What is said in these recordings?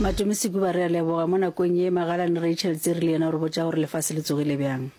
Matome Sekuba re a leboga mo nakong ye Magalane Rachel Tsiri le yena o re botša gore lefase le tsogile bjang.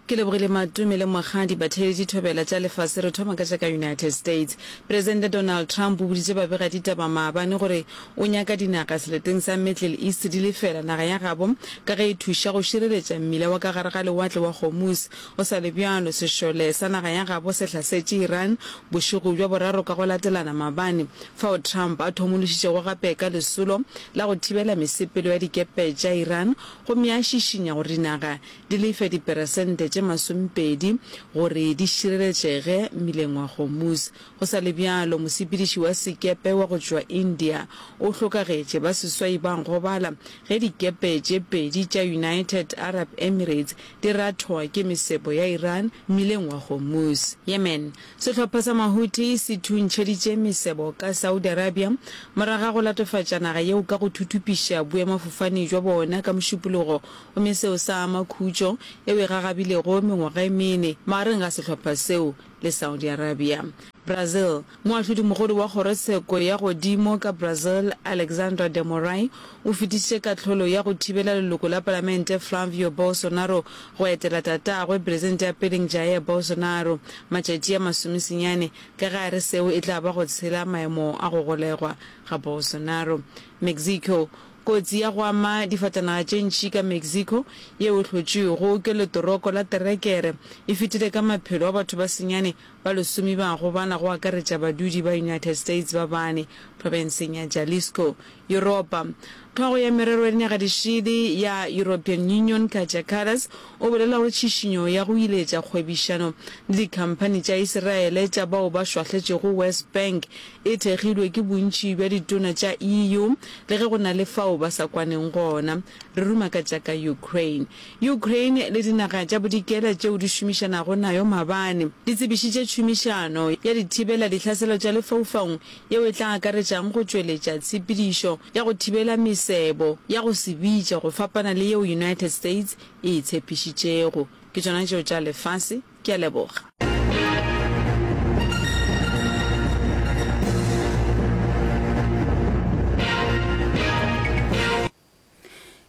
Ke lebogile Matome le Mogadi ba theeletše thobela tša lefase. Re thoma ka tša ka United States. Presidente Donald Trump o boditše babega ditaba maabane gore O nyaka dinaga seleteng sa Middle East di lefela naga ya gabo ka ge e thuša go šireletša mmila wa ka gare ga Lewatle wa Hormuz. Go sa le bjalo, sešole sa naga ya gabo se hlasetše Iran bošego bja boraro ka go latelana maabane, fao Trump a thomološitšego gape ka lesolo la go thibela mesepelo ya dikepe tša Iran gomme a šišinya gore dinaga di lefe diperesente tše masomepedi gore di šireletšege mmileng wa Hormuz. Go sa le bjalo, mosepediši wa sekepe wa go tšwa India o hlokagetše, ba seswai ba gobala ge dikepe tše pedi tša United Arab Emirates di rathoa ke mesebo ya Iran mmileng wa Hormuz. Yemen, Sehlopha sa Mahuthi se thuntšheditše mesebo ka Saudi Arabia morago ga go latofatša naga yeo ka go thuthupiša boemafofane bja bona ka Mošupologo gomme seo sa ama khutšo yeo e gagabilego mengwaga e mene magareng ga sehlopha seo le Saudi Arabia. Brazil, Moahlodimogolo wa Kgorotsheko ya Godimo ka Brazil, Alexandra de Moraes, o fetišitše kahlolo ya go thibela leloko la palamente Flavio Bolsonaro go etela tatagwe, peresente ya peleng Jair Bolsonaro, matšatši a masomesenyane, ka ge a re seo e tla ba go tshela maemo a go golegwa ga Bolsonaro. Mexico, Kotsi ya go ama difatanaga tše ntši ka Mexico yeo e hlotšwego ke letoroko la terekere e fetile ka maphelo a batho ba senyane ba lesome ba go bana go akaretša badudi ba United States ba bane profenseng ya Jalisco, Yuropa. Tlhogo ya merero ya dinaga di šele ya European Union Kaja Kallas o bolela gore tšhišinyo ya go iletša kgwebišano le dikhamphani tša Iseraele tša bao ba šwahletšego West Bank e thekgilwe ke bontši bja ditona tša EU le ge go na le fao ba sa kwaneng gona. Re ruma ka tša ka Ukraine. Ukraine le dinaga tša bodikela tšeo di šomišanago nayo maabane di tsebišitše tšhomišano ya dithibela dihlaselo tša lefaufaung yeo e tla akaretšang go tšweletša tshepedišo ya go thibela mesebo ya go se bitše go fapana le yeo United States e e tshepišitšego. Ke tšona tšeo tša lefase. Ke a leboga.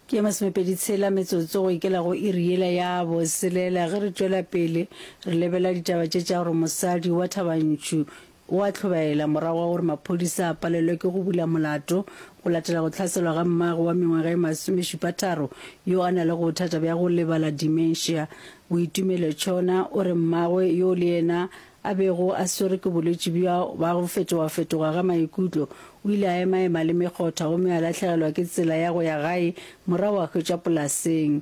ke ya masomepedi tshela metsotso go ikela go iri yela ya boselela ge re tšwela pele re lebela ditaba tše tša gore mosadi wa thabantšhu O a tlhobaela morago ga gore maphodisa a palelwe ke go bula molato go latela go hlaselwa ga mmagwe wa mengwaga e masomešupatharo yo a na le bothata bja go lebala, dementia. Boitumelo Chona o re mmagwe yo le yena a bego a swerwe ke bolwetši bja ba go fetogafetoga ga maikutlo o ile a emaema le mekgotha gomme a lahlegelwa ke tsela ya go ya gae morago a hwetša polaseng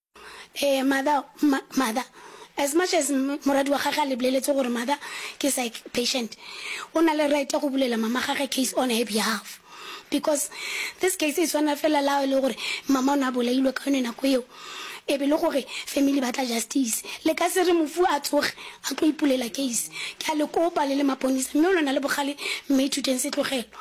Ee, mother, ma, mother. As much as moradi wa gage a le boleletso gore mother ke psych patient, o na le right ya go bulela mama gage case on her behalf. Because this case e tshwana fela le ha e le gore mama o ne a bolailwe ka yone nako eo, e be e le gore family ba tla justice. Le ka se re mofu a tsoge a tlo ipulela case. Ke a le kopa le le maponisa, mme o lo na le bogale, Mme Ithuteng Setlogelo.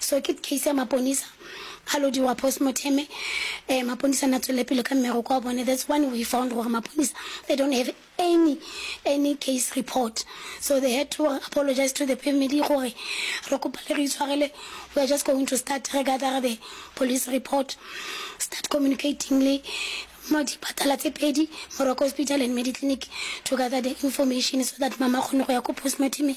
So ke case ya maponisa a lodiwa post mortem eh, maponisa na tswele pele ka mmereko wa bone that's when we found gore maponisa they don't have any any case report so they had to apologize to the family gore re kopa le re itshwarele we are just going to start re gather the police report start communicating le mo dipatala tse pedi moroko hospital and mediclinic to gather the information so that mama kgone go ya ko postmortemeng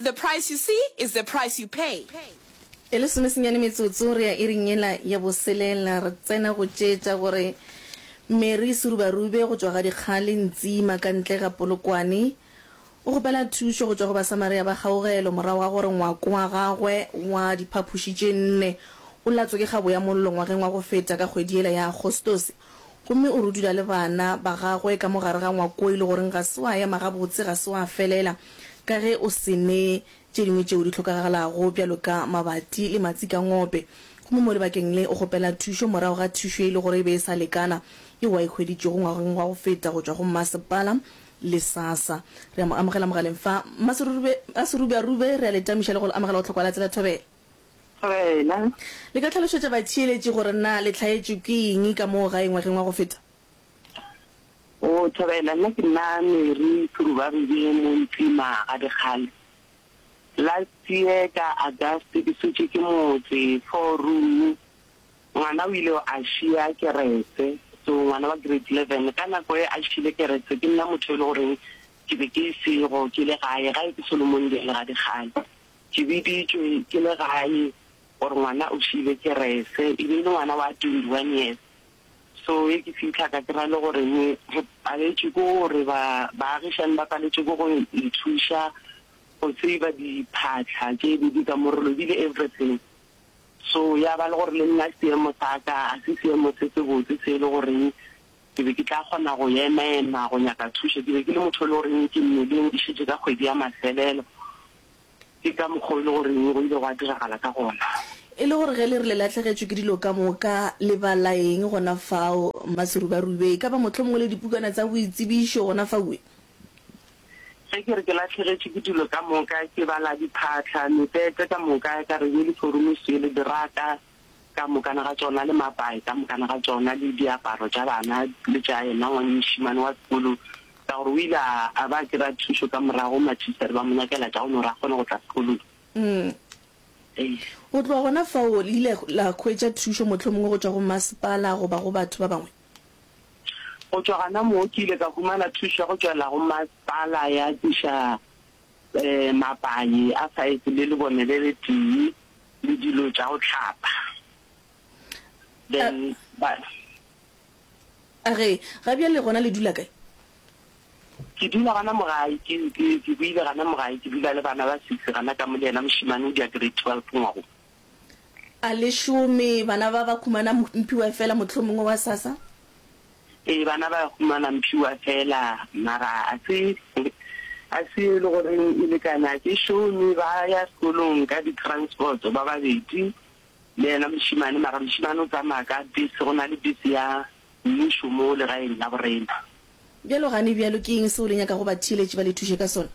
The price you see is the price you pay. E le somesenyane metsotso re ya iring yela ya boselela, re tsena go tšeetša gore Mary Serubarube go tšwa ga dikgale Ntsima ka ntle ga Polokwane. O kgopela thušo go tšwa go Basamaria ba kgaugelo morago ga gore ngwako wa gagwe wa diphaphoši tše nne o latswe ke kgabo ya mollo ngwageng wa go feta ka kgwedi yela ya Agostose. Gomme o rudula le bana ba gagwe ka mo gare ga ngwakoi le goreng ga se wa ema gabotse, ga se wa felela, ka ge o se ne tše dingwe tšeo di hlokagalago bjalo ka mabati le matsi ka ngope. Gomme mo lebakeng le o kgopela thušo morago ga thušo e le gore e be e sa lekana yeo a e hweditšego ngwageng wa go feta go tšwa go mmasepala le SASSA. Re a mo amogela mogaleng fa, Mma Serube, Mma Serube-a-rube, re a le tamiša le go le amogela go Tlhokwa la Tsela Thobela. Wena. Le ka tlhalošetša batheeletši gore na le hlaetšwe ke eng ka moo gae ngwageng wa go feta? O Thobela, nna ke nna Mary Thurubabebe mo Ntima ga Dikgale. Last year ka August ke sutše ke motse four room ngwana o ile a šia kerese, so ngwana wa grade eleven ka nako e a šiile kerese ke nna motho e le goreng ke be ke sego ke le gae, gae ke Solomondale ga Dikgale. Ke biditšwe ke le gae gore ngwana o šile kerese, e be e le ngwana wa twenty one years. So ge ke fitlha ka kry-a e le gore re paletšwe ke gore ba baagišani ba paletšwe ke go ithuša go save-a diphatlha tše be di ka mo re lobile everything. So ya ba le gore le nna seemo sa ka ga se seemo se se botse se e le goreng ke be ke tla kgona go ema-ema go nyaka thušo. Ke be ke le motho e le goreng ke mmeleng ke šetše ka kgwedi ya mafelelo, Ke ka mokgwa o e le gore go ile gwa diragala ka gona. E le gore ge le re le lahlegetšwe ke dilo ka moka, le bala eng gona fao? Mmaserubaribe, E ka ba mohlomongwe le dipukana tsa boitsebišo gona faue? Ge ke re ke lahlegetšwe ke dilo ka moka, ke bala diphatlha, mepete ka moka, ka re, yeliforomisiele, diraka, ka mokana ga tšona le mapae ka mokana ga tšona le diaparo tša bana le tša yena ngwannyšimane wa sekolo ka gore o ile a ba kry-a thušo ka morago matšhistare ba mo nyakela tša go no re a kgone go tla sekolong. Go tloga gona fao le ile la hwetša thušo mohlomongwe go tšwa go masepala goba go batho ba bangwe? Go tšwa gona moo ke ile ka humana thušo ya go tšwela go masepala ya tliša mapaye a saese le lebone le letee le dilo tša go hlapa. Then ba. A re, Ga bjale gona le dula kae? Ke dula gana mo gae, ke ke ke boile gana mo gae, ke dula le bana ba six gana ka mo le yena mošemane o dira grade twelve ngwago. A le šome bana ba ba khumana mphiwa fela mohlomongwe wa sasa? Ee, bana ba khumana mphiwa fela, mara a se, a se e le goreng e lekane. A ke šome ba ya sekolong ka di-transport-o ba babedi le yena mošemane, mara mošemane o tsamaya ka bese, go na le bese ya mmušo mo legaeng la borena. Bjalo gane bjalo, ke eng seo le nyakago batheeletši ba le thuše ka sona?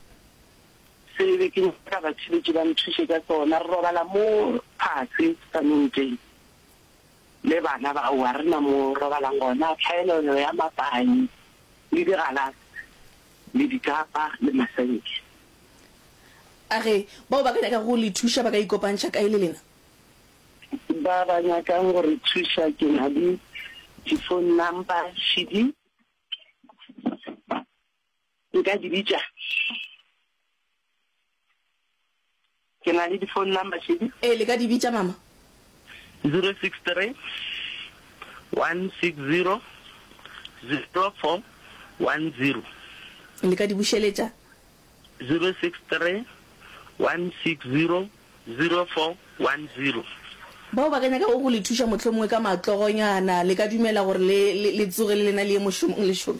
Se e be ke nyaka batšheletši ba nthuše ka sona. Re robala mo fase ka monteng le bana ba o. Ga re na mo robalang gona. Tlhaelelo ya mapaing le digalase le dikapa le masenke. A re bao ba ka nyakago go le thuša ba ka ikopantšha kae le lena? Ba ba nyakang go re thuša ke na le di-phone number, cd. Nka di bitša. Ke na le di-phone number šedi. Ee, le ka di bitša, Mama. 063-160-0410. Le ka di bušeletša. 063-160-0410. Bao ba ka nyakago go le thuša, mohlomongwe ka matlogonyana, le ka dumela gore le, le, le tsoge le lena le ye mošomong lešome.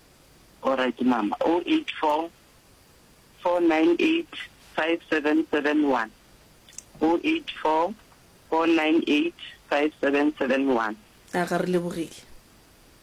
Alright mama, 0844985771, 0844985771. A ga re lebogile.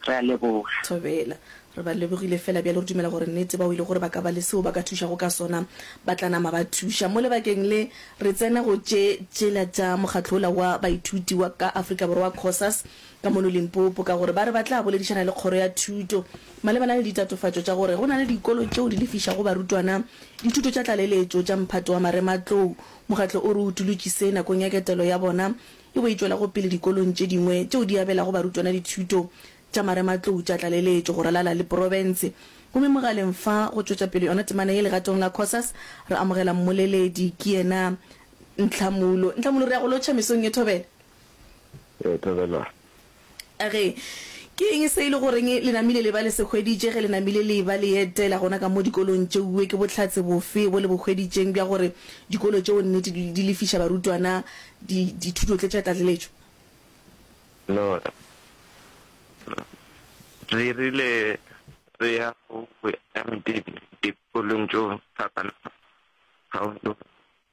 Re a leboga. Thobela. Re ba lebogile fela bjalo re dumela gore nnete ba o ile gore ba ka ba le seo ba ka thušago ka sona ba tla nama ba thuša. Mo lebakeng le re tsena go tše tšela tša mokgatlo ola wa baithuti wa ka Afrika Borwa, COSAS, ka mono Limpopo ka gore ba re ba tla boledišana le kgoro ya thuto malebana le ditatofatšo tša gore go na le dikolo tšeo di lefišago barutwana dithuto tša tlaleletšo tša mphato wa marematlou. Mokgatlo o re o utolotšise nakong ya ketelo ya bona e bo e tšwelago pele dikolong tše dingwe tšeo di abelago barutwana dithuto tša marematlou tša tlaleletšo go ralala le porofense. Gomme mogaleng fa go tšwetša pele yona temana ye legatong la Cosas re amogela mmoleledi ke yena Ntlhamulo. Ntlhamulo, re ya go lotšha mesong ye thobela. Ee, tlole la. A re, Ke eng se e le goreng le namile le ba le se hweditše ge le namile le e-ba le etela gona ka mo dikolong tšeue? Ke bohlatse bofe bo le bo hweditšeng bja gore dikolo tšeo nnete di, di lefiša barutwana di, dithuto tše tša tlatleletšo? Lora, Re rile re ya go boemedi dikolong tšeo fapana-fapana kgauswi le rena.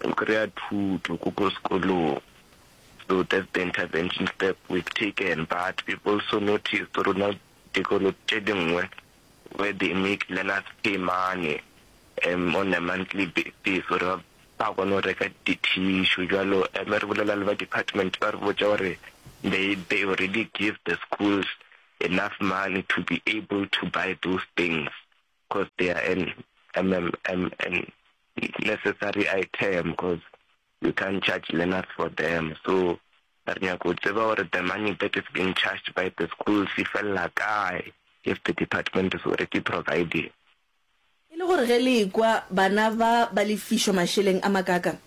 Go kry-a thuto ko ko sekolong. So that's the intervention step we've taken but we've also noticed rona dikolo tše dingwe where they make learners pay money um on a monthly basis gore ba kgone go reka di-tissue jalo um re bolela le ba department ba re botša gore they, they already give the schools enough money to be able to buy those things. Cause they are an MMMN necessary item cause you can't charge learners for them so re nyaka go tseba gore the money that is being charged by the schools e felela kae if the department is already providing E le gore ge le ekwa bana ba ba lefišwa mašeleng a makaakang?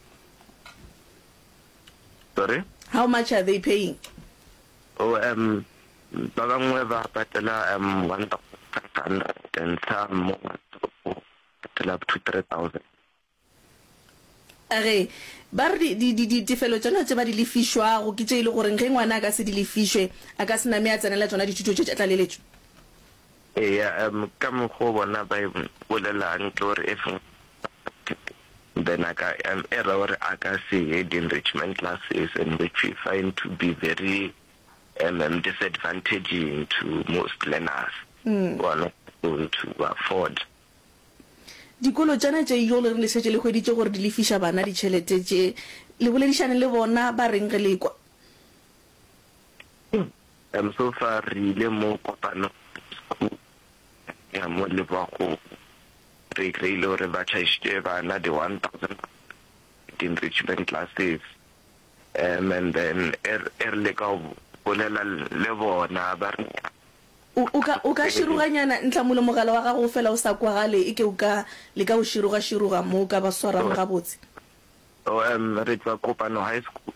Sorry? How much are they paying? Oh, um, Ba bangwe ba patela um 1,500 and some mo matsoko patela up to 3,000. A re, Ba re di, di, di, ditefelo tšona tše ba di lefišwago ke tše e le goreng ge ngwana a ka se di lefišwe, a ka se name a tsenela tšona dithuto tše tša tlaleletšo. Eya, um ka mokgwa o bona ba e bolelago ke gore if then a ka um era gore a ka se ye di-enrichment classes and which we find to be very mm disadvantaging to most learners who are not able to afford. Dikolo tšana tše jole re le šetše le hweditše gore di lefiša bana ditšhelete tše, le boledišane le bona ba reng ge le kwa? Em so far re ile mo kopano school ya mo le ba go re kry-ile gore ba charged bana di one thousand enrichment classes Um and then e re, e re leka go bolela le bona, ba re nna. O, o ka, o ka široganyana, Ntlhamolo, mogala wa gago o fela o sa kwagale, e ke o ka leka go široga-široga mo o ka ba swarang gabotse. Oh, um, re tšwa kopano high school,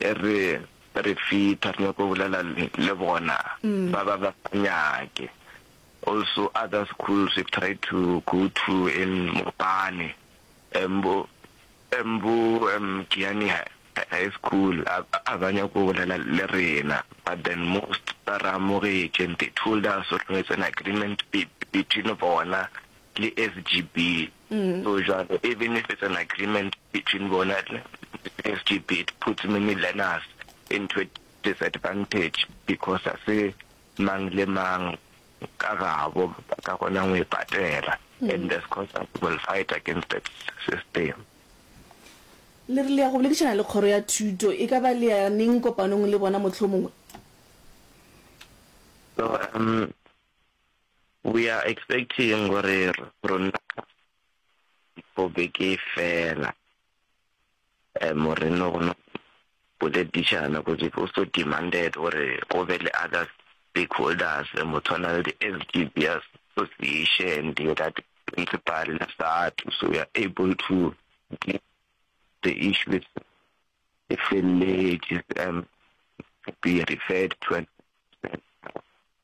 e re, re fitha, re nyaka go bolela le, le bona, ba ba, ba sa nyake. Also other schools we've tried to go to in Mopane. Mbo, Mbo, um, Kiani ha, ha e school, a, a ba nyako go bolela le rena, but then most ba re amogetše and they told us gore it's an agreement be, between bona le SGB. So jwale, even if it's an agreement between bona le SGB, it puts many learners into a disadvantage because a se mang le mang Ka gabo, ba ka kgona go e patela. And as constance will fight against that system. Le re le ya go boledišana le kgoro ya thuto, e ka ba le ya neng kopanong le bona mohlomongwe? So um, we are expecting gore rona for beke e fela, Morena o kgona go boledišana because it also demanded gore go be le other stakeholders go tshwana le di-SGB association, the that principal le SADTU so we are able to deal the issue e feleletše and be referred to an.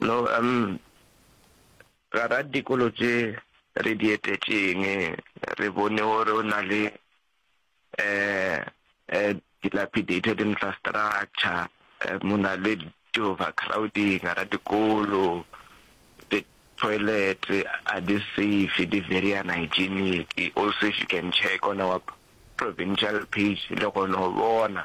No, um, ga ra dikolo tše re di etetšeng, re bone gore o na le um um dilapidated infrastructure, um o na le di-overcrowding gara dikolo, di-toilet ga di safe, di very unhygienic. Also, if you can check on our provincial page, le kgona go bona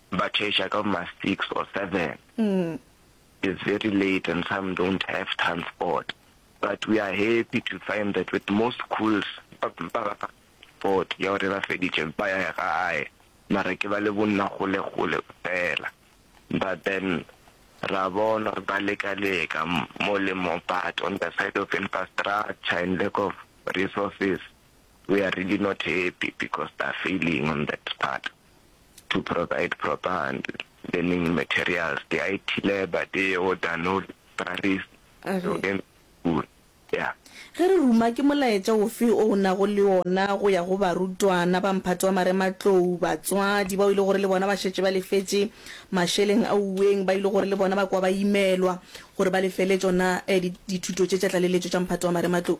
Ba church-a ka bo ma six or seven. It's very late and some don't have transport but we are happy to find that with most schools ba ba ba transport ya gore ba feditše ba ya gae mara ke ba le bonna gole gole fela but then ra bona gore ba leka leka mo le mo but on the side of infrastructure and lack of resources we are really not happy because they are failing on that part. to provide proper and learning materials, the IT lab, the or download Paris, A re. to end school. Yeah. Ge re ruma, ke molaetša ofe o o nago le ona go ya go barutwana ba mphato wa marematlou, batswadi bao e le gore le bona ba šetše ba lefetše mašeleng a uweng, ba e le gore le bona ba kwa ba imelwa gore ba lefele tšona eh, di, dithuto tše tša tlaleletšo tša mphato wa marematlou?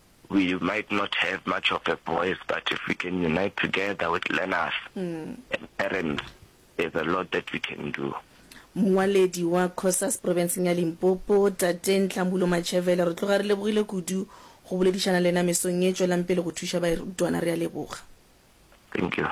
We might not have much of a voice but if we can unite together with learners and parents there's a lot that we can do. Mongwaledi wa Cosas Profenseng ya Limpopo, Tate Nhlamulo Matšhevele, re tloga re lebogile kudu go boledišana le yena mesong ye, tšwelang pele go thuša bairutwana, re a leboga. thank you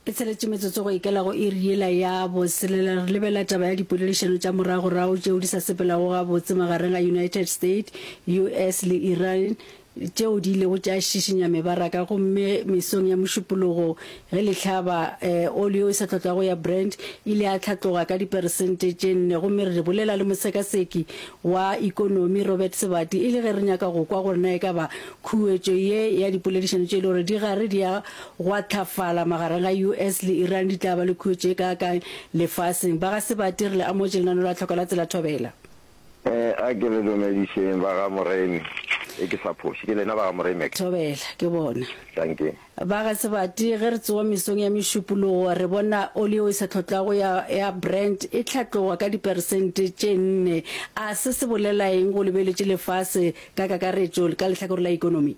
e tsheletše metsotso go ikela go iri yela ya boselela re lebela taba ya dipoledišano tša moragorago tšeo di sa sepelago gabotse magareng ga united states us le iran tšeo di ilego tša šišinya mebaraka gomme mesong ya mošupologo ge lehlaba um eh, oli o e sa tlotlago ya brand ile ya tlhatloga ka diperesente tše nne gomme re bolela le mosekaseki wa ikonomi robert sebati e le ge re nyaka go kwa gore na e ka ba Khuetšo ye ya dipoledišano tše e le gore di gare di a gwathafala magareng ga US le Iran di tla ba le khuetšo e kaakang lefaseng? Ba ga Sebate re le amotše lenaneo la Tlhoko la Tsela Thobela. A ke le dumedišeng ba ga Moremi. Ge ke sa phoše ke lena ba ga Moremi. Thobela, Ke bona. Tankeng. Ba ga Sebati, ge re tsowa mesong ya mešupologo, re bona oli yeo e sa tlhotlwago ya, ya Brent e hlatloga ka diperesente tše nne. A se se bolela eng go lebeletše lefase ka kakaretšo ka lehlakore la ekonomi?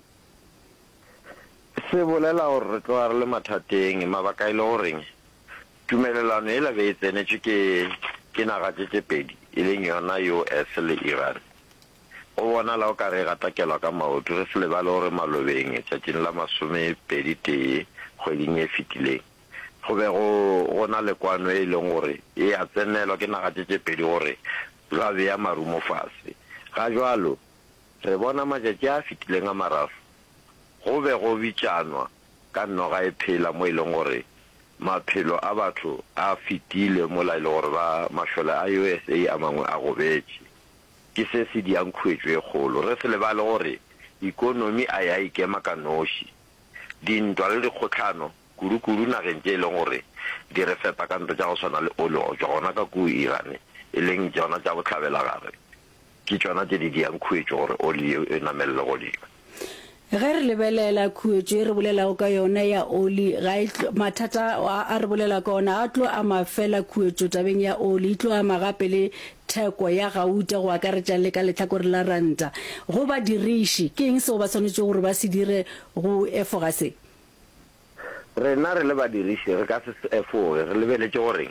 Se bolela gore re tloga re le mathateng. Mabaka e le goreng? Tumelelano yela be e tsenetšwe ke, ke naga tše tše pedi, e leng yona US le Iran. Go bonala o ka re e gatakelwa ka maoto. Re se lebale gore malobeng tšatšing la masomepedi tee kgweding e fetileng, go be go go na le kwano e e leng gore e a tsenelwa ke naga tše tše pedi gore za bea marumo fase. Ga jwalo, re bona matšatši a a fetileng a mararo go be go bitšanwa ka noga e phela mo e leng gore maphelo a batho a fetile mola e le gore ba mašole a USA a mangwe a gobetše. Ke se se diang khuetšo e kgolo. Re se lebale gore ikonomi a e a ikema ka noši. Dintwa le dikgohlano, kudukudu nageng tše e lego gore di re fepa ka ntwa tša go swana le ole go tšwa gona ka kuu Iran e leng tšona tša bohlabelagare, ke tšona tše di diang khuetšo gore ole yeo e namelele godimo. Ge re lebelela khuetšo e re bolelago ka yona ya oli, ga e tlo, mathata a a re bolela ka ona a tlo ama fela khuetšo tabeng ya oli, e tlo ama gape le theko ya gauta go akaretša le ka lehlakore la ranta. Go badiriši, ke eng seo ba swanetšego gore ba se dire go efoga se? Rena re le badiriši re ka se se efoge re lebeletše gore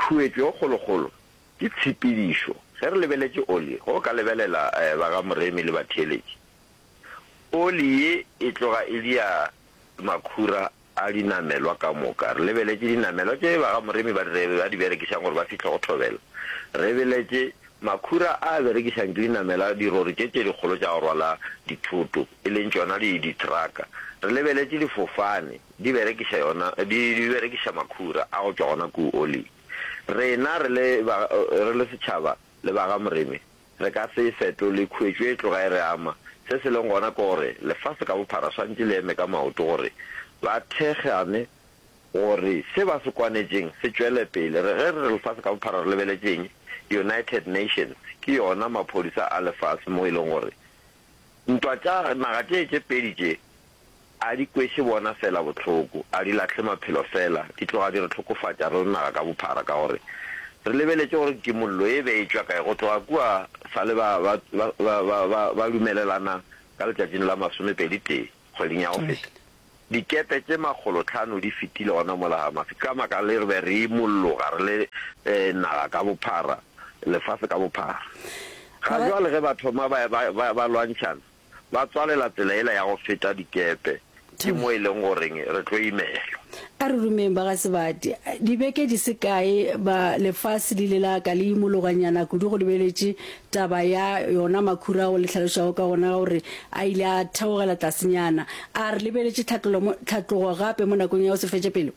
khuetšo e kgolokgolo Ke tshepedišo. Ge re lebeletše oli, ge o ka lebelela ba ga Moremi le batheeletši, oli ye e tloga e dia makhura a dinamelwa ka moka. Re lebeletše dinamelwa tše ba ga Moremi ba di berekišang gore ba fihle go thobela. Re beletše makhura a a berekišang ke dinamelwa, dirori tše tše dikgolo tša go rwala dithoto, e leng tšona dithraka. Re lebeletše difofane di berekiša yona, di berekiša makhura a go tšwa gona kuu oling. Rena re le ba, re le setšhaba le ba ga Moremi, re ka se e fetole, khuetšo e tloga e re ama. Se se leng gona ke gore lefase ka bophara swanetše le eme ka maoto gore ba thekgane gore se ba se kwanetšeng se tšwele pele. Re, ge re re lefase ka bophara re lebeletše eng? United Nations ke yona maphodisa a lefase mo e leng gore Ntwa tša naga tše tše pedi tše a di kweše bona fela bohloko, a di lahle maphelo fela, di tloga di re hlokofatša re le naga ka bophara ka gore re lebeletše gore kimollo e be e tšwa kae go tloga kua fale ba ba ba ba ba ba lumelelana ka letšatšing la masomepedi tee. kgweding ya go feta, dikepe tše makgolotlhano di fetile gona mola Hamathi. Ka baka le re be re imolloga re le naga ka bophara, lefase ka bophara. Ga jwale ge ba thoma ba, ba, ba, ba lwantšhana, ba tswalela tsela yela ya go feta dikepe, ke mo e leng goreng re tlo imelwa. A re rumeng ba ga Sebate. Dibeke di se kae, ba, lefase le ile la ka le imologanyana kudu go lebeletše Taba ya yona makhura ao le hlalošago ka gona ga gore a ile a theogela tlasenyana, a re lebeletše tlhatlogo gape mo nakong ya go se fetše pelo?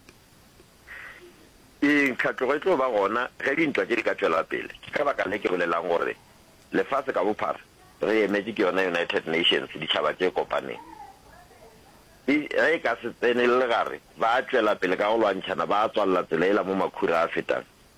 Ee, tlhatlogo e tlo ba gona ge dintwa tše di ka tšwela pele. Ke ka baka le ke bolelang gore lefase ka bophara re emetše ke yona United Nations, Ditšhaba tše Kopaneng. E, ge e ka se tsenelele gare, ba a tšwela pele ka go lwantšhana, ba a tswalela tsela yela mo makhura a fetang.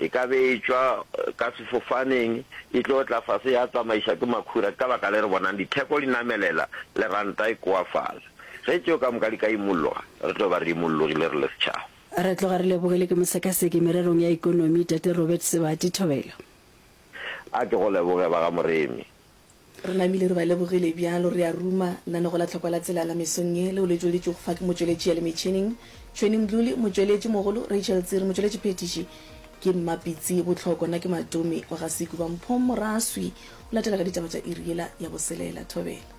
e ka be e tšwa ka sefofaneng e tlo tla fase ya tsamaiša ke makhura ke ka baka le re bonang ditheko di namelela le ranta e koafala. Ge tšeo ka moka di ka imolloga re tlo ba re imollogile re le setšhaba. Re tloga re lebogile ke mosekaseki mererong ya ekonomi Tate Robert Sebati Thobela. A ke go leboge ba ga Moremi. Re namile re ba lebogile bjalo, re a ruma. Nna ne go la tlhokwa la tselala mesong ye, leo le tšweleditšwego fa ke motšweletši ya le metšhining, Tshweni Mdluli, motšweletši mogolo, Rachel Tsiri, motšweletši phethiši, ke Mma Pitsi Botlhoko, nna ke Matomi wa ga Sekuba, Mpho Moraswi o latela ka ditaba tša iri yela ya boselela. Thobela.